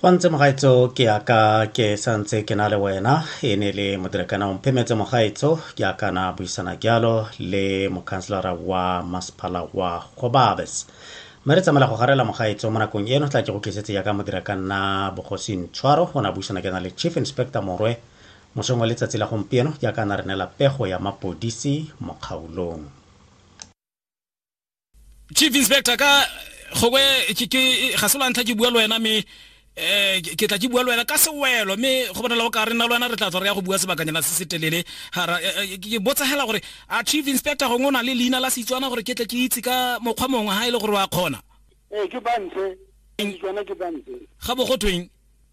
go ntse mogaetso ke yaka ke santse ke na le wena e ne le modirekana o mphemetse mogaetso ke akana buisana jalo le mokhanselara wa masepala wa gobabes mme re tsamela go garela mogaetso mo nakong eno tla ke go tlisetse yaka modirekanna bogosing tshwaro go na buisana ke na le chief inspector morwe mosong wa letsatsi la gompieno jaaka na re neela pego ya mapodisi mo kgaolong chief inspector ka gogwe ga se lwantlha ke bua le wena mme eh ke tla ke bua le wena ka sewelo mme go bonala o ka re nna le wena re tla tswa re ya go bua sebakanyana se se telele hara eh, eh, ke botsagela gore a chief inspector gongwe o na le leina la setswana gore ke tle ke itse ka mokgwa mongwe ha e le gore wa kgona ee ke bantse setswana ke bantse ga bo go tweng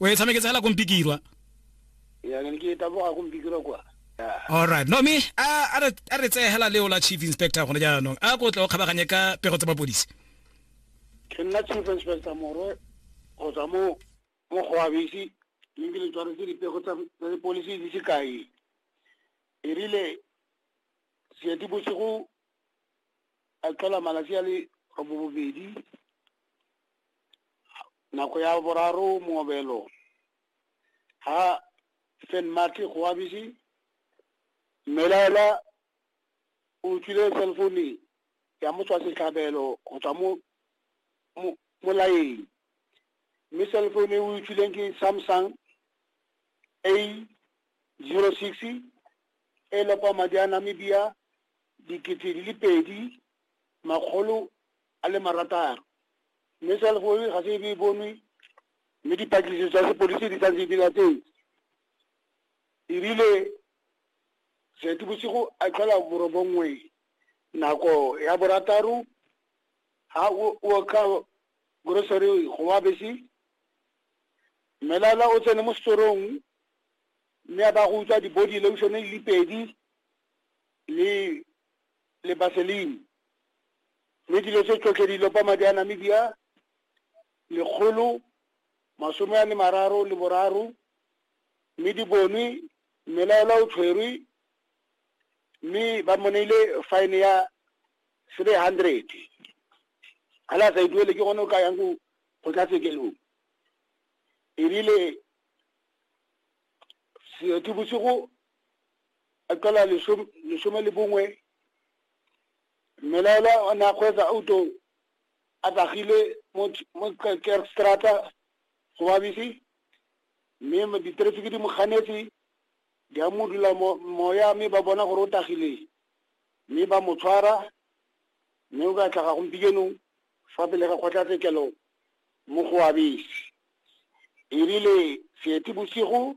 o e tshameketse fela ko mpikirwa alright no me a re tseye hela leo la chief inspector gone jaanong a ko tle o kgabaganye ka pego tsa mapodisi ke nna chief inspector morwe go tswa mo mo go abisi mme ke le tshwaretse dipego tsa dipolisi di se kae e rile seeti bosigo a tlhola malatsi a le robobedi nako ya boraro moobelo ha fen mate go abisi mmelaela o utlwile cellphone ya motswa setlhabelo go tswa mo molaeng mme cellphone e o utlwileng ke samsung a zero six e lopa madi a namibia dikete di le pedi makgolo a le marataro mme cell phone ga se e be e bonwe mme dipatlisiso tsa sepodisi di santse di latetse erile seetebosigo a tlhola borobongwe nako ya borataro ha o ka grocery go wa bese mmelala o tsene mo setorong mme a ba go utswa di-body lotion di le pedi le le baselini mme dilo tse tsotlhe di lopa madi a namibia lekgolo masome a le mararo le boraro mme di bonwe mmelaelwa o tshwerwe mme ba mo neile fine ya three hundred ga le a sa e duele ke gone o ka yang ko kgotlatshekelo erile seetebosigo a tlhola lesome le bongwe mmelaelwa o ne a kgweetsa auto a tagile mo kerkstrata go babisi mme diterefiki di mo ganetse di a mo dula moya mme ba bona gore o tagileng mme ba mo tshwara mme o ka tlhaga gompikenong fa pele ga kgotlatshekelo mo go abese e rile seeti bosigo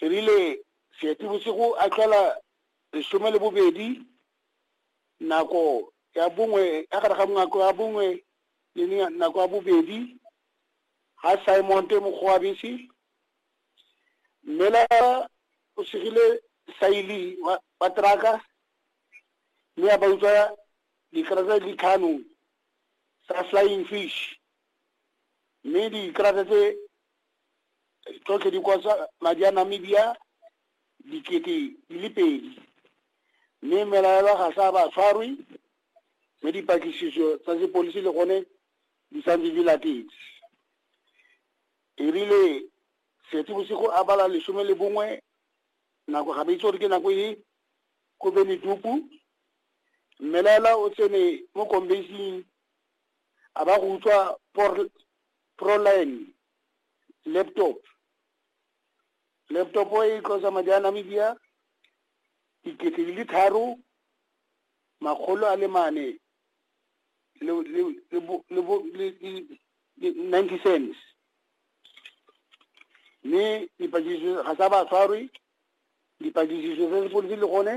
e rile seetebosigo a tlhola lesome le bobedi nako ya bongwe ya gare ga nako ya bongwe le nako ya bobedi ga simonte mokgwabese mme la o segile saili wa teraka mme a ba utswa dikarata di tlhano tsa flying fish mme dikarata tse tsotlhe di kosa madi a namibia dikete di le pedi mme melaelwa ga sa ba tshwarwe mme dipatlisiso tsa sepolisi le gone di santse di latetse erile setse bosigo a bala lesome le bongwe nako ga ba itse gore ke nako e ko beneduku mmelaela o tsene mo kombasing a ba go utswa Proline laptop laptop e tlosa madi a namibia dikete di le tharo makgolo a le mane ninety cents mme dipatlisiso ga sa ba tshwarwe dipatlisiso tsa sepodisi le gone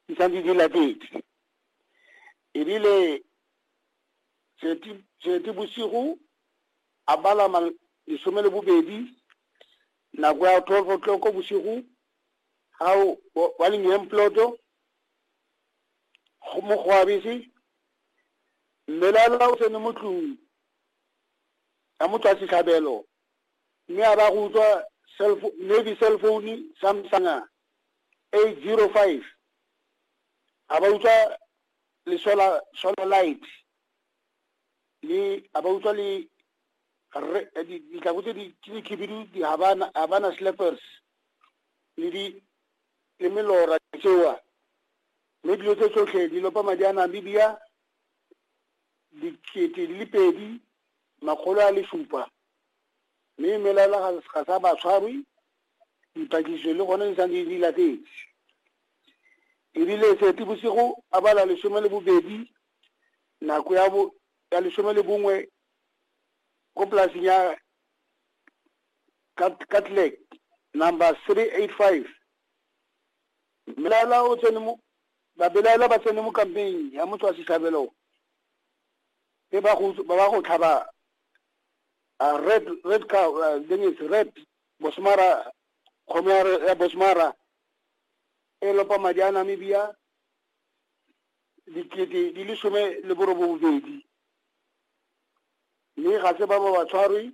di santse di latetse ebile Seetebosigo a bala ma lesome le bobedi nako ya twelve o'clock bosigo ga wa lengeng ploto go mo go abese mmelela o tsene mo tlung ya mo tswa setlhabelo mme a ba go utlwa navy cell phone samsung eight zero five a ba utlwa le solar solar light le a ba utlwa le ditlako tse di khibidu di habana habana slippers le di le melora tsewa mme dilo tse tsotlhe di lopa madi a namibia dikete di le pedi makgolo a le supa mme melaela ga sa ba tshwarwe dipatlisiso le gone di santse di latetse e rile Seetebosigo a bala lesome le bobedi nako ya bo ya lesome le bongwe ko polaseng ya Catlec number three eight five mmelaela o tsene mo babelaela ba tsene mo kampeng ya motho wa setlhabelo e ba go ba ba go tlhaba uh, red red cow uh, thing is red bosmara kgomo ya bosmara e lopa madi a Namibia dikete di le some le borobobedi mme ga se ba ba ba tshwarwe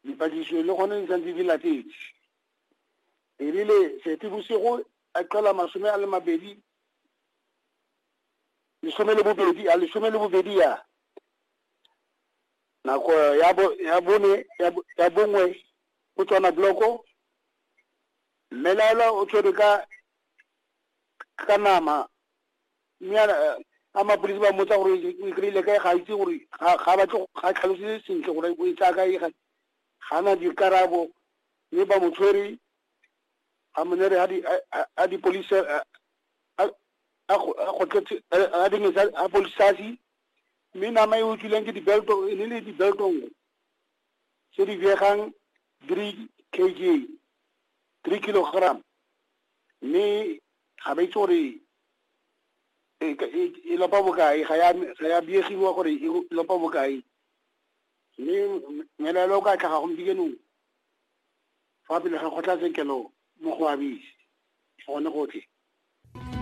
dipatlisiso le gone di santse di latetse erile sete bosigo a qela masome a le mabedi lesome le bobedi a lesome le bobedi ya nako ya bone ya bongwe go tswana bloko Mme Laela o tshwere ka ka nama mme a mapodisi ba mmotsa gore o e kry-ile kae ga a itse gore ga batle ga tlhalosetse sentle gore o e tsaya kae ga na dikarabo mme ba mo tshwere a mo nere a dipolisi a dingesa a polisasi mme nama e utlwileng ke dibelto e ne le dibelto nngwe tse di biegang 3 kg, three kilogram, mme ga ba itse gore e lopa bokae, ga ya biegiwa gore e lopa bokae. Mme mmelaelwa o ka tlhaga gompieno fa pele ga kgotlatshekelo mo go Abisi, gone gotlhe.